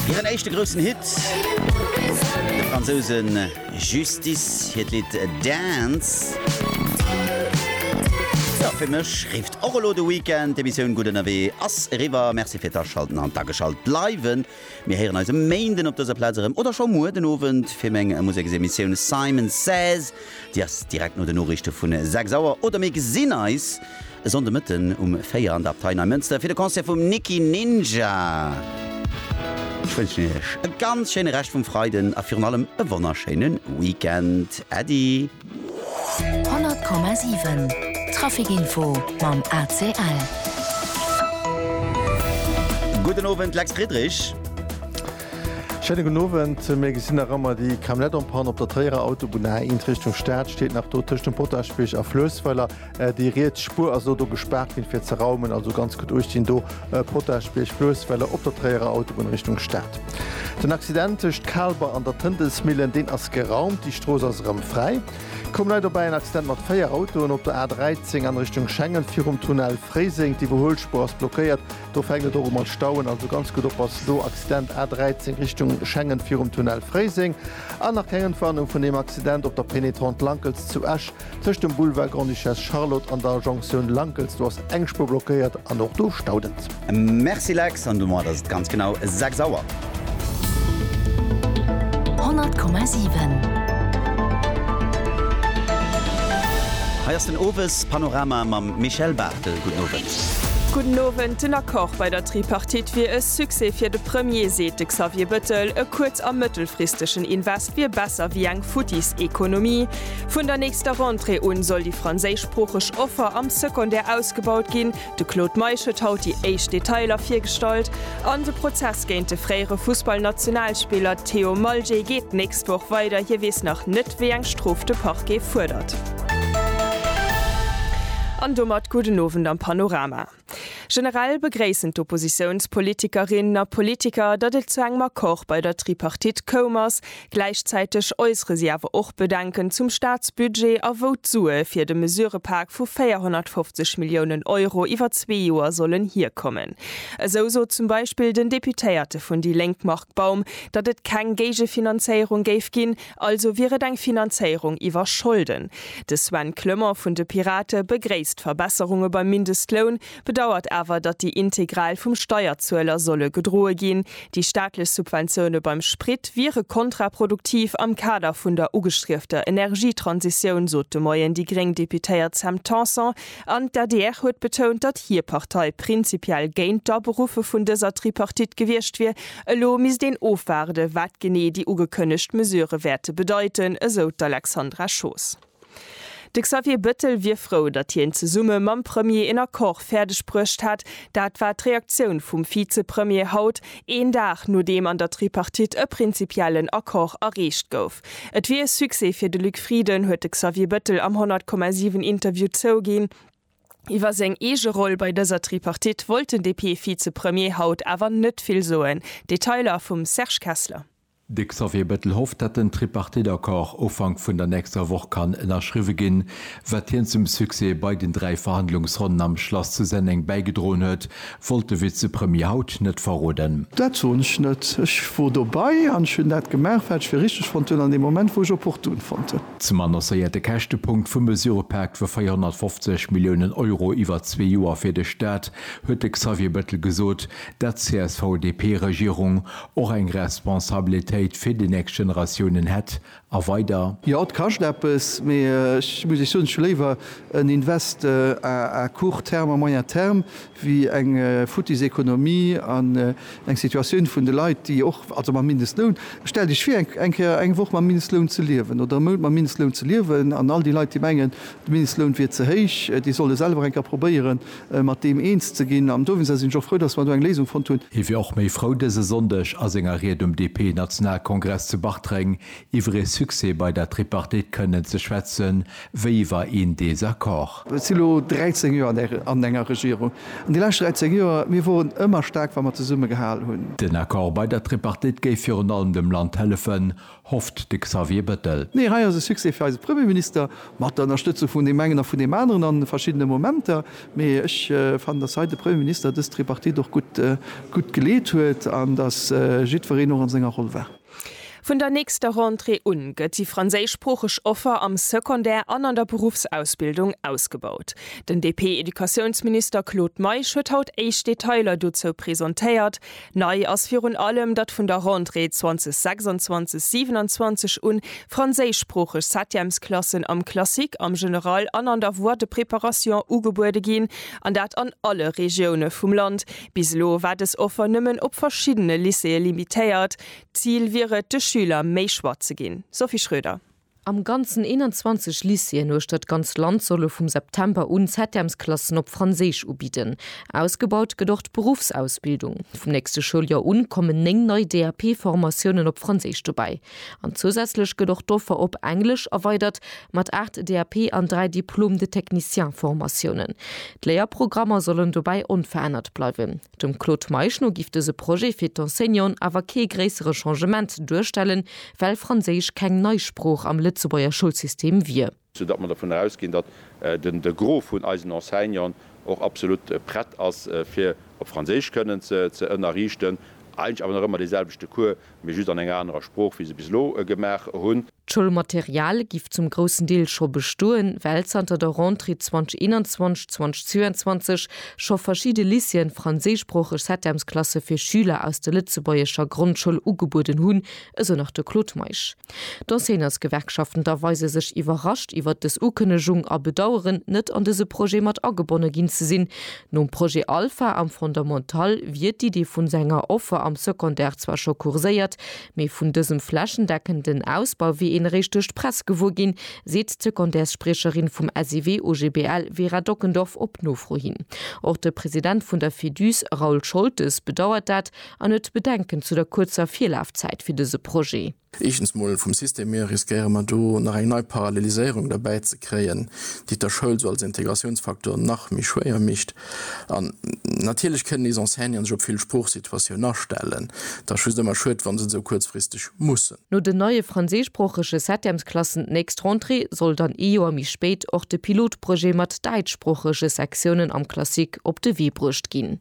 Hiren éischte groussen Hit, de Fransousen Justice hiert Lidd Dance. Jo, fir mech rifft och elo de Weekend. D'Emissioun Gutt Ënnerwee ass eriwwer. Merci firt Aschalten an d'Ageschalt bleiwen. Mir héieren eis e Méinden op dëser Plaz erëm oder scho muer den Owend fir meng Museksemissioun Simon Says. Déi ass direkt no de Noriichte vun 6 Auer oder mir gesinn eis e Sonnde Mëtten um 4 an der Abtei Neimënster fir de Concert vum Nicky Ninja. Ech wënschen iech e ganz schéine Rescht vum Freiden a virun allem e wonnerschéine Weekend. Äddi! 100,7 Traficinfo mam ACL. Gudden Owend, Lex Friedrich. Schéine gudden Owend. Mir gesinn nach ëmmer déi Camionnette en panne op der Tréierer Autobunn, A1 Richtung Stad, steet nach do tëscht dem Potaschbierg a Fluessweiler. Déi riets Spuer ass elo do gespaart ginn fir ze raumen, also ganz gutt uechtginn do, Potaschbierg, Fluessweiler op der Tréierer Autobunn Richtung Stad. Den Accident tëscht Kaalber an der Tëntelsmillen, deen ass geraumt, déi Strooss ass erëm fräi. Komm nei dobäi en Accident mat 4 Autoen op der A13 an Richtung Schengen virum Tunnel Fréiseng, d'Iwwerhuelspuer ass blockéiert. Do fänkt et och u mat stauen, also ganz gutt oppassen do. Accident A13 Richtung Schengen virum Tunnel Fréiseng. An nach keng Entwarnung vun deem Accident op der Pénétrante Lankels zu Esch. Tëscht dem Boulevard Grande-Duchesse Charlotte an der Jonktioun Lankels, do ass eng Spuer blockéiert an och do staut et. Merci Lex, an domat ass et ganz genau 6 Auer. 100,7. Hei ass den Owespanorama mam Michèle Barthel. Gudden Owend. Gudden Owend, Den Accord bei der Tripartite wier e Succès fir de Premier, seet de Xavier Bëttel. E kuerz a mëttelfristegen Invest wier besser wéi eng futtis Ekonomie. Vun der nächster Rentrée un soll déi franséischsproocheg Offer am Secondaire ausgebaut ginn. De Claude Meisch huet haut déi éischt Detailer virgestallt. An de Prozess géint de fréiere Fussballnationalspiller Theo Malje geet d'nächst Woch weider. Hie weess nach net, wéi eng Strof de Parquet fuerdert. An domat gudden Owend am Panorama. Generell begréissen d'Oppositiounspolitikerinnen a politiker, datt et zu engem Accord bei der Tripartite koum ass, Gläichzäiteg äussere si awer och Bedenken zum Staatsbudget a wou d'Sue fir de Mesurepak vu 450 Milliounen Euro iwwer zwee Joer sollen hierkommen. Esou sot zum Beispill den Deputéierte vun déi Lénk Marc Baum, datt et keng Géigefinanzéierung géif ginn, also wier et eng Finanzéierung iwwer Scholden. De Sven Clement vun de Pirate begréisst Verbesserunge beim Mindestloun, bedauert awer, datt déi integral vum Steierzueler solle gedroe ginn. Déi staatlech Subventioune beim Sprit wiere kontraproduktiv am Kader vun der ugestriefter Energietransitioun, sot de Moien déi gréng Deputéiert Sam Tanson. An d'ADR huet betount, datt hir Partei prinzipiell géint d'Aberuffe vun dëser Tripartite gewiescht wier. Elo misst een ofwaarde wat genee déi ugekënnegt Mesurë wäerte bedeiten, esou d'Alexandra Schoos. De Xavier Bettel wier frou, datt hien zesumme mam Premier een Accord fäerdeg bruecht hätt. Dat war d'Reaktioun vum Vizepremier haut, een Dag nodeem an der Tripartite e prinzipiellen Accord erreecht gouf. Et wier e Succès fir de Luc Frieden, huet de Xavier Bettel am 100,7 Interview zouginn. Iwwer seng eege Roll bei dëser Tripartite wollt den DP-Vizepremier haut awer net vill soen. Detailer vum Serge Kessler. De Xavier Bettel hofft, datt den Tripartite-Accord Ufank vun der nächster Woch kann ënnerschriwwe ginn, wat hien zum Succès bei den dräi Verhandlungsronnen am Schlass zu Senneng bäigedroen huet, wollt de Vizepremier haut net verroden. Dat soen ech net. Ech wor dobei an ech hunn dat gemaach, wat ech fir richteg fonnt hunn an deem Moment, wou ech opportun fonnt hunn. Zum annoncéierte Käschtepunkt vum Mesurëpak vu 450 Milliounen Euro iwwer zwee Joer fir de Staat huet de Xavier Bettel gesot, dat d'CSV-DP-Regierung och eng Responsabilitéit fir déi nächst Generatiounen hätt a weider. Jo, et kascht eppes, mee ech muss Iech soen, ech hu léiwer en Invest à court terme, à moyen terme, wéi eng futtis Économie an eng Situatioun vun de Leit, déi och, also mam Mindestloun, stellt Iech vir, eng Kéier eng Woch mam Mindestloun ze liewen oder e Mount mam Mindestloun ze liewen. An all déi Leit, déi mengen, de Mindestloun wier ze héich, déi solle selwer eng Kéier probéieren, mat deem eens ze ginn an dowéinster sinn ech och frou, datt mer do eng Léisung fonnt hunn. Hie wier och méi frou dëse Sonndeg a senger Ried um DP-Nationalkongress zu Bartreng iwwer ee Succès bei der Tripartite kënnen ze schwätze wéi iwwer een Desaccord. Ech si lo 13 Joer an enger Regierung an déi lescht 13 Joer, mir woren ëmmer staark wa mer zesumme gehal hunn. Den Accord bei der Tripartite géif virun allem dem Land hëllefen, hofft de Xavier Bettel. Nee, hei ass e Succès fir eise Premierminister, mat der Ënnerstëtzung vun deem engen a vun deem aneren a verschiddene Momenter. Mee ech fannen, datt hei de Premierminister dës Tripartite och gutt geleet huet an datt jiddwereen och an senger Roll war. Vun der nächster Rentrée un gëtt déi franséischsproocheg Offer am Secondaire an an der Beruffsausbildung ausgebaut. Den DP-Educatiounsminister Claude Meisch huet haut éischt Detailer dozou presentéiert. Nei ass virun allem, datt vun der Rentrée 2026, 27 un franséischsproocheg Septièmesklassen am Classique, am General an an der Voie de préparation ugebuede ginn, an dat an alle Regioune vum Land. Bis elo war dës Offer nëmmen op verschiddene Lycéeë limitéiert. D'Zil wier et, de Schüler méi Choix ze ginn. Sophie Schröder. Am Ganzen 21 Lycéeën uechter d'ganz Land solle vum September un Septèmesklassen op Franséisch ubidden. Ausgebaut gëtt och d'Beruffsausbildung. Vum nächste Schouljoer un kommen 9 nei DAP-Formatiounen op Franséisch dobäi. An zousätzlech gëtt och d'Offer op Englesch erweidert mat 8 DAP an 3 Diplôme de technicien-Formatiounen. D'Léierprogrammer sollen dobäi onverännert bleiwen. Dem Claude Meisch no giff dëse Projet fir d'Enseignanten awer kee gréissere Changement duerstellen, well Franséisch keng nei Sprooch am Lëtzebuerger Schoulsystem wier. Sou datt mer dovun ausginn, datt de Gros vun eisen Enseignanten och absolut prett ass fir op Franséisch kënnen ze ënnerriichten, eigentlech awer nach ëmmer deeselwechte Cours, mee just an enger anerer Sprooch wéi se bis elo gemaach hunn. D'Schoulmaterial giff zum groussen Deel scho bestoen, well zanter der Rentrée 2021/22 scho verschidde Lycéeën franséischsproocheg Setemsklasse fir Schüler aus der lëtzebuergescher Grondschoul ugebueden hunn, esou nach de Claude Meisch. D'Enseignantsgewerkschaften da weise sech iwwerrascht iwwert dës Ukënnegung a bedaueren, net an dëse Projet mat agebonne ginn ze sinn. Nom Projet Alpha am Fondamental wier d'Idee vun senger Offer am Secondaire zwar scho kurséiert, Mee vun dësem flächendeckenden Ausbau wier een eréischt duerch d'Press gewuer ginn, seet d'Secondaires-Spriecherin vum SIW OGBL Vera Dockendorf op Nofro hin. Och de President vun der Fedus Raoul Scholtes bedauert dat an huet Bedenken zu der kuerzer Virlafzäit fir dëse Projet. Éischtens mol vum System hier riskéiere mer do nach eng nei Paralleliséierung derbäi ze kréien, déi et der Schoul sou als Integratiounsfaktor nach méi schwéier mécht. An natierlech kënnen nees Enseignanten sech op vill Sproochsituatiounen astellen. Et ass just ëmmer schued, wa se et esou kuerzfristeg mussen. No den neie franséischsproochege Septemsklassen d'nächst Rentrée soll dann ee Joer méi spéit och de Pilotprojet mat däitschsproochege Sektiounen am Classique op de Wee bruecht ginn.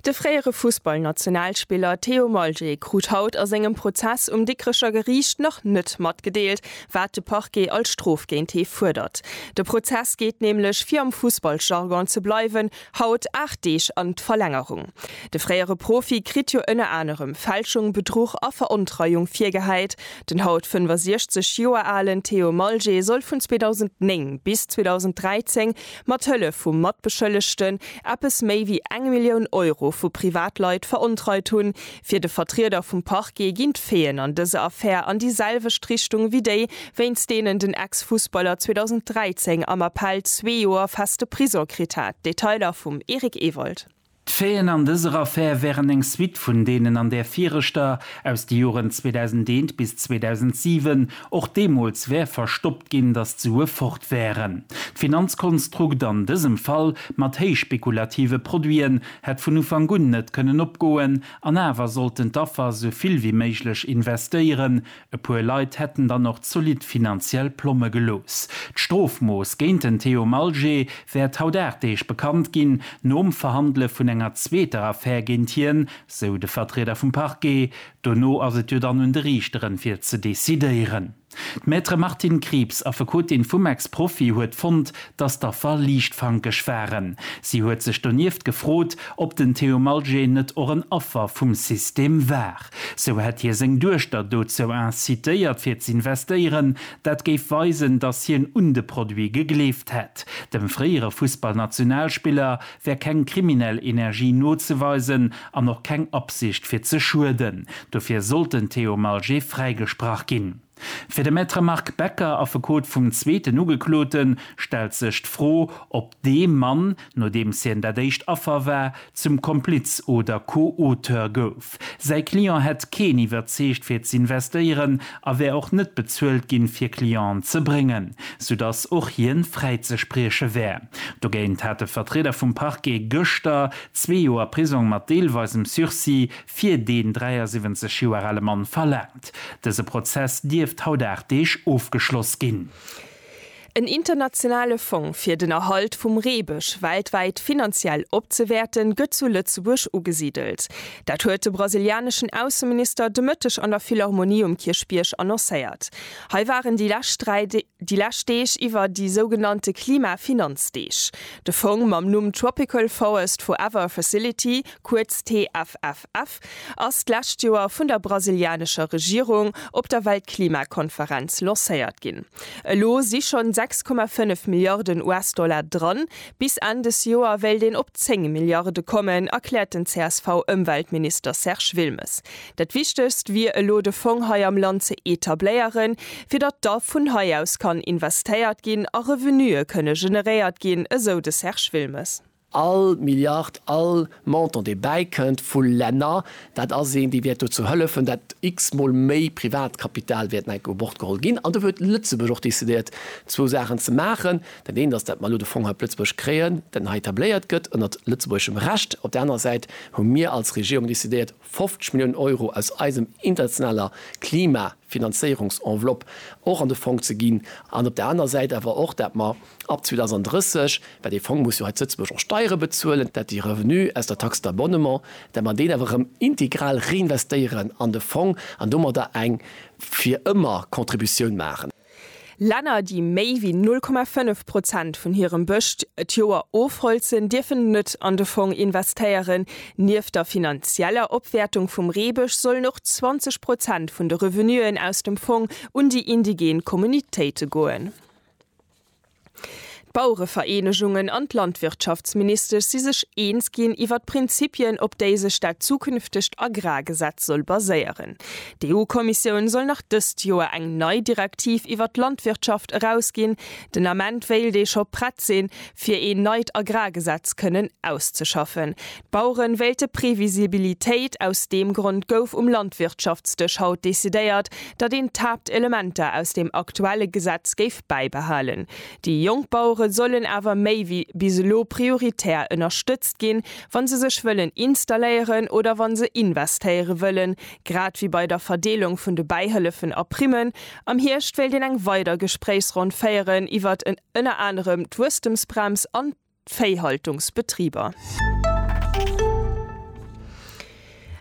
De fréiere Fussballnationalspiller Theo Maljé krut haut a sengem Prozess um Dikrecher Geriicht nach net matgedeelt, wat de Parquet als Strof géint hie fuerdert. De Prozess geet nämlech, fir am Fussballjargon ze bleiwen, haut 8 Deeg an d'Verlängerung. De fréiere Profi kritt jo ënner anerem Fälschung, Bedruch a Verontreiung virgehäit. Den haut 65 Joer alen Theo Maljé soll vun 2009 bis 2013 Mat Hëllef vu Matbeschëllegten eppes méi wéi eng Millioun Euro vu Privatleit verontreit hunn. Fir de Vertrieder vum Parquet ginn d'Feeën an dëser Affär an déi selwecht Richtung wéi déi, wéinst deenen den Ex-Fussballer 2013 am Appell zwee Joer feste Prison kritt hat. Detailer vum Eric Ewald. D'Faiten an dëser Affär wären eng Suite vun deenen an där viregter, aus de Joren 2001 bis 2007. Och deemools wär verstoppt ginn, datt d'Sue fort wären. D'Finanzkonstrukt an dësem Fall, mat héichspekulative Produiten, hätt vun Ufank un net kënnen opgoen. An awer sollten d'Affer sou vill wéi méiglech investéieren, E puer Leit hätten dann och zolidd finanziell Plomme gelooss. D'Strofmooss géint den Theo Malgé wäert haut 8 Deeg bekannt ginn, nom Verhandele vun enger zweeter Affär géint hien, sou de Vertrieder vum Parquet. Dono ass et jo dann un de Riichteren, fir ze decidéieren. D'Maître Martine Krieps, Affekotin vum Ex-Profi, huet fonnt, datt d'Affer liichtfankeg waren. Si huet sech donieft gefrot, ob den Theo Malgé net och en Affer vum System war. Sou hätt hie seng Duechter dozou incitéiert fir z'investéieren. Dat géif weisen, datt hien un de Produit gegleeft hätt. Dem fréiere Fussballnationalspiller wär keng kriminell Energie nozeweisen an och keng Absicht fir ze schueden. Dofir sollt den Theo Malger fräigesprach ginn. Fir de Maître Marc Becker, Affekot vum zweeten Ugekloten, stellt sech d'Fro, ob dee Mann, nodeems hien dat éischt Affer war, zum Kompliz oder Co-Auteur gouf. Säi Client hätt keen iwwerzeegt fir z'investéieren a wär och net bezuelt ginn, fir Clienten ze bréngen, soudass och hien fräizesprieche wär. Dogéint hat de Vertrieder vum Parquet gëschter zwee Joer Prisong mat deelweisem Sursis fir deen 73 Joer ale Mann verlaangt. Dëse Prozess dierft haut 8 Deeg ofgeschloss ginn. En internationale Fong fir den Erhalt vum Reebësch weltwäit finanziell opzewäerten, gëtt zu Lëtzebuerg ugesidelt. Dat huet de brasilianeschen Ausseminister de Mëtteg an der Philharmonie um Kierchbierg annoncéiert. Hei waren déi lescht 3 Déi lescht Deeg iwwer déi sougenannte Klimafinanzdeeg. De Fong mam Numm Tropical Forest Forever Facility, kuerz TFFF, ass d'lescht Joer vun der brasilianescher Regierung op der Weltklimakonferenz lancéiert ginn. Elo si schonn 6,5 Milliarden US-Dollar dran. Bis Enn des Joer wéilt een op 10 Milliarde kommen, erkläert den CSV-Ëmweltminister Serge Wilmes. Dat Wichtegst wier elo de Fong hei am Land ze etabléieren, fir datt da vun hei aus kann investéiert ginn a Revenuë kënne generéiert ginn, esou de Serge Wilmes. All Milliard, all Montant dee bäikënnt vu Länner, dat ass een, dee wäert dozou hëllefen, datt x-mol méi Privatkapital wäert no enke u Bord geholl ginn. An do huet Lëtzebuerg och decidéiert zwou Saachen ze maachen. Dat eent ass, datt mer elo de Fong hei op Lëtzebuerg kréien, datt en hei etabléiert gëtt ënnert lëtzebuergeschem Recht. Op der anerer Säit hu mir als Regierung decidéiert, 50 Milliounen Euro aus eisem internationaler Klimafinanzéierungsenveloppe och an de Fong ze ginn an op der anerer Säit awer och, dat mer ab 2030, well dee Fong muss jo hei zu Lëtzebuerg och Steiere bezuelen, dat déi Revenue aus der Taxe d'abonnement, dat mer deen awer erëm integral reinvestéieren an de Fong an domadder eng fir ëmmer Contributioun maachen. Länner, déi méi wéi 0,5 Prozent vun hirem Bëscht et Joer ofholzen, dierfen net an de Fong investéieren. Nieft der finanzieller Opwäertung vum Reebësch sollen och 20 Prozent vun de Revenuen aus dem Fong un déi indigen Communautéite goen. D'Bauerevereenegungen an d'Landwirtschaftsministesch si sech eens ginn iwwer d'Prinzipien, op déi sech dat zukünftegt Agrargesetz soll baséieren. D'EU-Kommissioun soll nach dëst Joer eng nei Direktiv iwwer d'Landwirtschaft erausginn. Den Ament wéilt ee scho prett sinn, fir een neit Agrargesetz kënnen auszeschaffen. D'Baueren wéilte Previsibilitéit, aus deem Grond gouf um Landwirtschaftsdësch haut decidéiert, datt een d'Haaptelementer aus deem aktuelle Gesetz géif bäibehalen. Déi jonk Bauere sollen awer méi wéi bis elo prioritär ënnerstëtzt ginn, wa se sech wëllen installéieren oder wa se investéiere wëllen, grad wéi bei der Verdeelung vun de Bäihëllefen a Primmen. Am Hierscht wéilt een eng weider Gespréichsronn féieren iwwert ënner anerem d'Wuesstemsbrems an. d'Véihaltungsbetriber.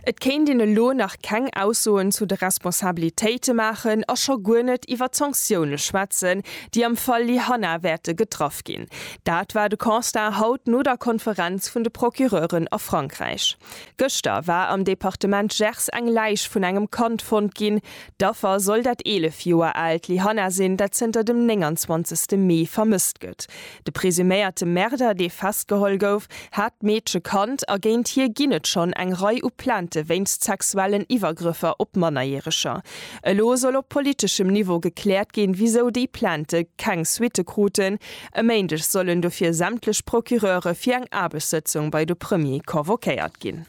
Et kéint een elo nach keng Aussoen zu de Responsabilitéite maachen a scho guer net iwwer d'Sanktioune schwätzen, déi am Fall Lyhanna wäerte getraff ginn. Dat war de Constat haut no der Konferenz vun de Procureuren a Frankräich. Gëschter war am Departement Gers eng Läich vun engem Kand fonnt ginn. D'Affer soll dat 11 Joer aalt Lyhanna sinn, dat zënter dem 29 Mee vermësst gëtt. De presuméierte Märder, dee festgeholl gouf, hat d'Meedche kannt a géint hie ginn et schonn eng Rei u Plainte wéinst sexuellen Iwwergrëffer op Mannerjäreger. Elo soll op politeschem Niveau gekläert ginn, wisou déi Plainte keng Suitte kruten. E Méindeg sollen dofir sämtlech Procureure fir eng Aarbechtssëtzung bei de Premier convoquéiert ginn.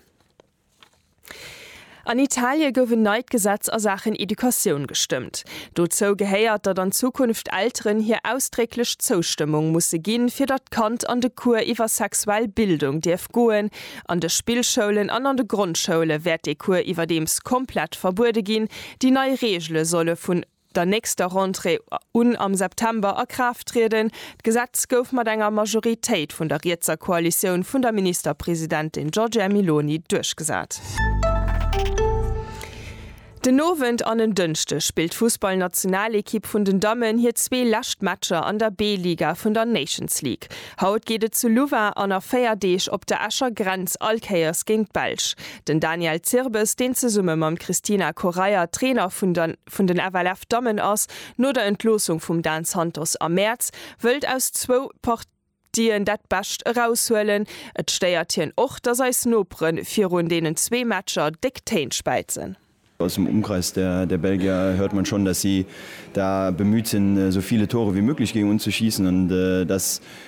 An Italie gouf en neit Gesetz a Saachen Educatioun gestëmmt. Dozou gehéiert, datt an Zukunft Elteren hir ausdrécklech Zoustëmmung musse ginn, fir datt d'Kand an de Cours iwwer sexuell Bildung dierf goen. An de Spillschoulen an an de Grondschoule wäert dee Cours iwwerdeems komplett verbuede ginn. Déi nei Reegele solle vun. der nächster Rentrée un am September a Kraaft trieden. D'Gesetz gouf mat enger Majoritéit vun der rietser Koalitioun vun der Ministerpresidentin Giorgia Meloni duerchgesat. Den Owend an en Dënschde spillt d'Fussballnationalekipp vun den Dammen hir zwee lescht Matcher an der B-Liga vun der Nations League. Haut geet et zu Louvain an a véier Deeg op der Escher Grenz all Kéiers géint d'Belsch. Den Daniel Zirbes, deen zesumme mam Christina Correia Trainer vun der. vun den FLF Dammen ass no der Entloossung vum Dan Santos am Mäerz, wëllt aus zwou Partien dat Bescht eraushuelen. Et stéiert hien och, datt eis Nopere virun deenen zwee Matcher déck Téin späizen. Aus dem Umkreis der der Belgier hört man schon, datt si da bemüht sinn, sou viele Tore wie möglich géing un ze schiessen an datt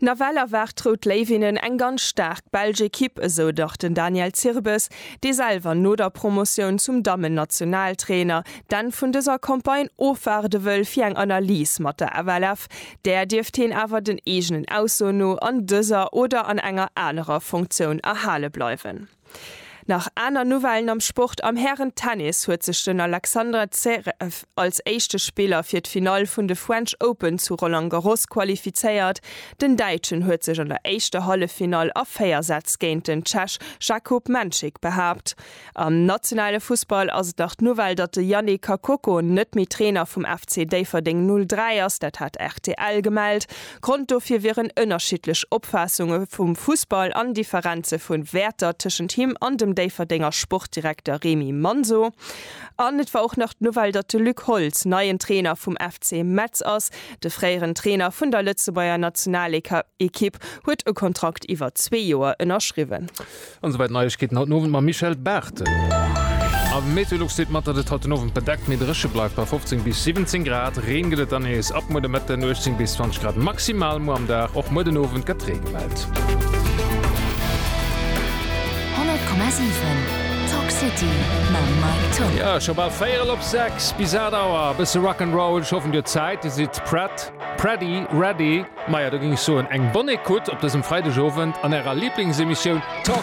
Nawell erwaart d'Rout Léiwinnen eng ganz staark belsch Ekipp, esou dach den Daniel Zirbes, dee selwer no der Promotioun zum Dammen-Nationaltrainer d'Enn vun dëser Campagne ofwaarde wëll fir eng Analys mat der FLF. Där dierft heen awer den eegenen Aussoen no an dëser oder an enger anerer Funktioun erhale bleiwen. Nach aner Nouvellen am Sport, Am Hären-Tennis huet sech den Alexander Zverev als éischte Spiller fir d'Finall vun de French Open zu Roland Garros qualifizéiert. Den Däitschen huet sech an der éischter Halleffinall a 4 Sätz géint den Tschech Jakub Menchik behaapt. Am nationale Fussball ass et nach d'Nouvelle, datt de Yannick Kakoko net méi Trainer vum FC Déifferdeng 03 ass. Dat hat rtl gemellt. Grond dofir wieren ënnerschiddlech Opfaassunge vum Fussball an Differenze vu Wäerter tëschent him an dem Déifferdenger Sportdirekter Remy Manso. An et war och nach d'Nouvelle, datt de Luc Holtz neien Trainer vum FC Metz ass. De fréieren Trainer vun der Lëtzebuerger Nationalekipp huet e Kontrakt iwwer zwee Joer ënnerschriwwen. An souwäit d'Neiegkeeten haut den Owend mam Michèle Barthel. A Meteolux deelt mat, datt et haut den Owend bedeckt mee dréche bleift bei 15 bis 17 Grad. Reen gëtt et dann nees ab muer de Mëtten, 18 bis 20 Grad maximal muer am Dag. Och muer den Owend gëtt Ree gemellt. 100,7 Talk City mam Mike Toh. Jo, scho bal véierel op sechs. Bis 8 Auer e bësse Rock 'n' Roll. Ech hoffen, Dir hutt Zäit, Dir sidd prett, pready, ready, maja, da géing ech soen, eng Bonne Écoute op dësem Freidegowend an Ärer Liblingsemissioun Talk.